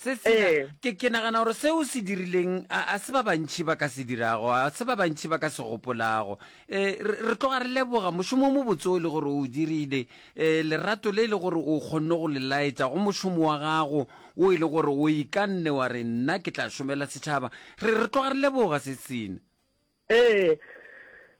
se se ke ke nagana gore seo se dirileng a a se ba bantšhi ba ka se dirago a se ba bantšhi ba ka se gopolago eh, re re tloga re leboga mošomo o mobotse o le gore o o dirile eh, lerato le e le gore o kgonne go le laetša go mošomo wa gago o e le gore o ikanne wa re nna ke tla šomela setšhaba re re tloga re leboga se sene Ee,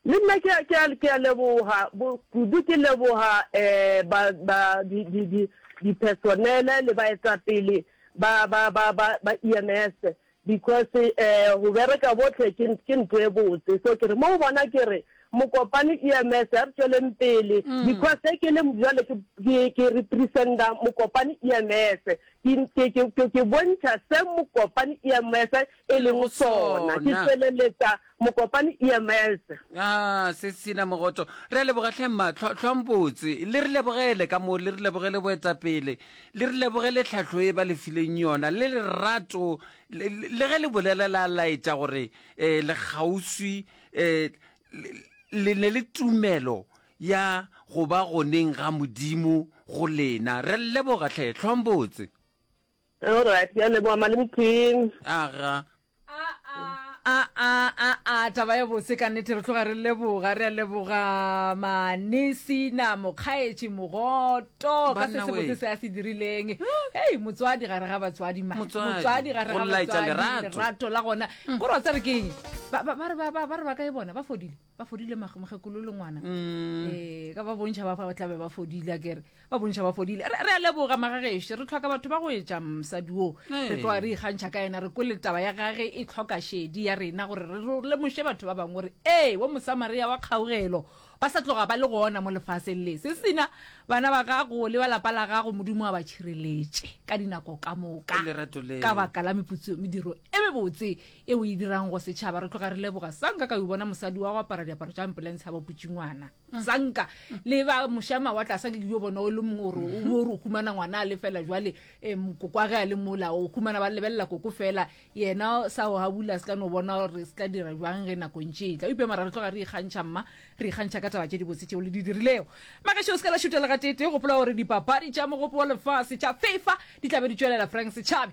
le nna ke a, ke a, ke a leboga, bo, kudu ke leboga um ba, ba, di, di, di, dipersonele le baetapele ba, ba, ba, ba, ba EMS, because um go bereka bohle ke, ke ntho e botse. So ke re, mo go bona ke re, Mokopane EMS, a re tšweleng pele, because ge ke le bjale ke, ke, ke represent-a Mokopane EMS, ke, ke, ke, ke, ke bontšha se Mokopane EMS e lego sona. Ke feleletsa Mokopane EMS. A se sena mogoto. Re a leboga hle mma Tlho- tlhompotse. Le re lebogele ka moo, le re lebogele boetapele, le re lebogele tlhahlo e ba le fileng yona, le lerato, le, le, le ge le bolela la laetša gore eh, le kgauswi, eh, le, le ne le tumelo ya go ba goneng ga Modimo go lena. Re a le leboga hle, tlhompotse. Alright, ke a leboga Malemu King. Aga. A a a a taba ya bose ka nnete re tloga re leboga re a leboga manesina mokgaetši mogoto ka se Banna se botse wee. se a se dirileng ei motswadi gare ga batswadi ma Motswadi, motswadi gare go ga laetša batswadi lerato. lerato la gona gore wa tseba ke eng ba ba- ba re ba- ba- ba re ba kae bona ba fodile ba fodile mokgekolo le ngwana mm. ee ka ba bontšha ba ba tlabe ba fodile kere ba bontšha ba fodile re a leboga magagešo re tlhoka batho ba go etša mosadi oo re tloa re ikgantšha ka ena re kwele taba ya gage e tlhoka shedi ya rena gore re lemoše batho ba bangwe gore ee wo mosamaria wa kgaogelo ba sa tloga ba le gona mo lefaseng le se sena bana ba gago le ba lapa la gago modimo wa ba tšhireletše ka dinako ka moka ka baka la meputso mediro e mebotse e o e dirang go setšhaba re tloga re leboga sanka ka o bona mosadi wa go apara diaparo tša ambulance ga ba putšingwana mm. sanka le ba mošama wa tlasa ke yo bona o le mongwe ore o ore o humana ngwana a le fela jwale um koko a ge a le mola o humana ba lebelela koko fela yena sa o gabula se ka no bona gore se tla dira jwang ge nako ntše e tla upe mara re tloga re ikgantšha mma re ikgantšha ka taba tše dibotse tšeo le di dirilego makešo o se ka la šutela ga tete gopola gore dipapadi tša mogopo wa lefase tša fifa di tlabe di tšwelela frank setšhabe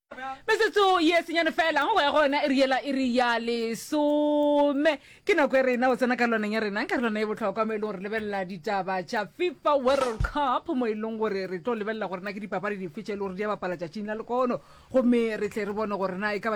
Metsotso ye senyane fela go ya gona e re yela e re ya lesome ke nako e rena o tsena karolwaneng ya rena karolwana e botlhokwa mo e leng gore lebelela ditaba tša fifa world cup mo e leng gore re tlo lebelela gore na ke dipapadi dife tše e le gore di a bapala tšatšing la lekono gomme re tle re bone gore na e ka ba